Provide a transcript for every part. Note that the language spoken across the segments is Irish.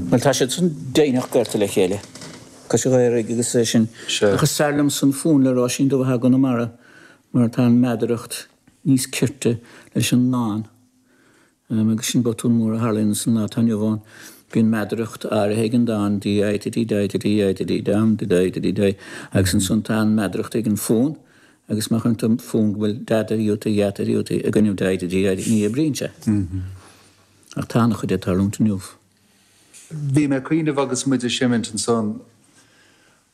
Bhuel, tá siad san deimhnitheach gaolta le chéile. Tá siad dhaoraigh agus é sin. Ach is fearr liom san fonn le Róisín Dubh atá i gConamara mar tá an meadaracht níos cirte leis an ndán. Agus sin botún mór a tharla ins an lá atá inniu ann. Bhí an meadaracht áirithe ag an dán dee-eye-de-dee-die-de-dee-eye-de-dee-dee-dum-de-dee-eye-de-dee-die. Agus ansan tá an meadaracht ag an fonn agus má chuireann tú fonn go bhfuil dada iúta, dheata iúta ag an fhonn ag an gcruinniú dee-eye-de-dee-eye-de-dee-eye bríonn sé. Ach tá ana chuid ag tarlúint inniu. Bhí mé ag cuimhneamh agus muid ag seimint ansan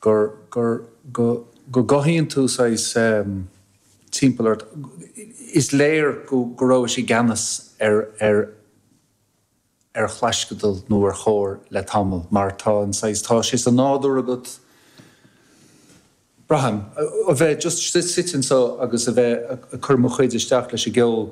gur, gur, go, go gcothaíonn tú saghas timpeall ort, is léir go, go rabhais i gceannas ar, ar, ar chlaisceadal nó ar chór le tamall mar tá an saghas, tá sé sa nádúr agat, braithim, a bheith just suite anso agus a bheith ag cur mo chuid isteach leis an gceol.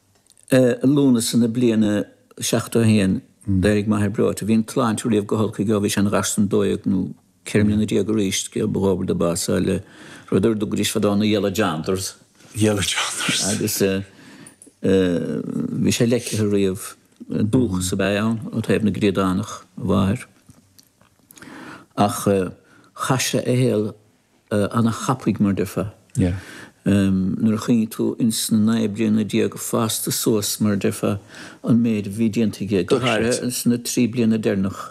I Lúnasa na bliana 71 d'éirigh m'athair breoite. Bhí an tsláinte riamh go holc aige ó bhí sé ina gharsún dó dhéag nó ceithre mbliana déag d'aois gur ba dhóbair dó bású le rud ar a dtugaidís fadó na Yellow Janders. Yellow Janders. Agus bhí sé leicthe riamh. Dúchas ab ea é ann ó thaobh na gCríodánach, a mháthair, ach chaith sé a shaol ana thapaidh mar deirfeá nuair a chuimhníonn tú ins na naoi bliana déag fásta suas mar deirfeá an méid a bhí déanta aige go háirithe ins na trí bliana deirneach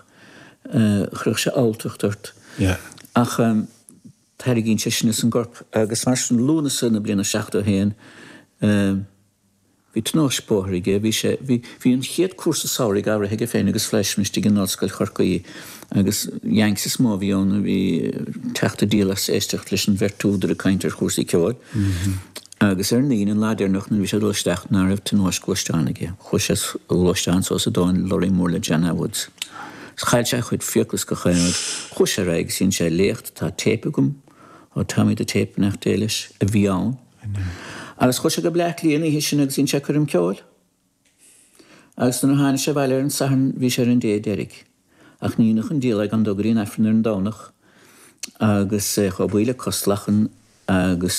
chuirfeadh sé alltacht ort ach tarraingíonn sé sin as an gcorp agus mar sin Lúnasa na bliana seachtó haon Bhí tionóisc bóthair aige. Bhí sé, bhí, bhí an chéad cúrsa samhraidh eagraithe aige féin agus Fleischmann istigh in Ollscoil Chorcaí agus Yanks is mó a bhí ann a bhí tar éis díol as éisteacht leis an mbeirt údar ag caint ar chúrsaí ceoil. Agus ar an Aoine, an lá deireanach nuair a bhí sé ag dul isteach ná raibh tionóisc ghluaisteáin aige. Chuaigh sé sa ghluaisteán suas i dtóin lorraí mór le John A Woods. Is chaill sé a chuid fiacla is gach aon rud. Chuaigh sé ar aghaidh agus dhein sé léacht, tá téip agam, ó Tommy the Tape nach dtéigh leis, a bhí ann. Agus chuaigh sé go Bleácliath an oíche sin agus dhein sé coirm ceoil. Agus nuair a tháinig sé abhaile ar an Satharn bhí sé ar an dé deiridh. Ach ní dhéanfadh an diabhal é gan dul go dtí an Aifreann ar an Domhnach agus é chomh buí le cos lachan agus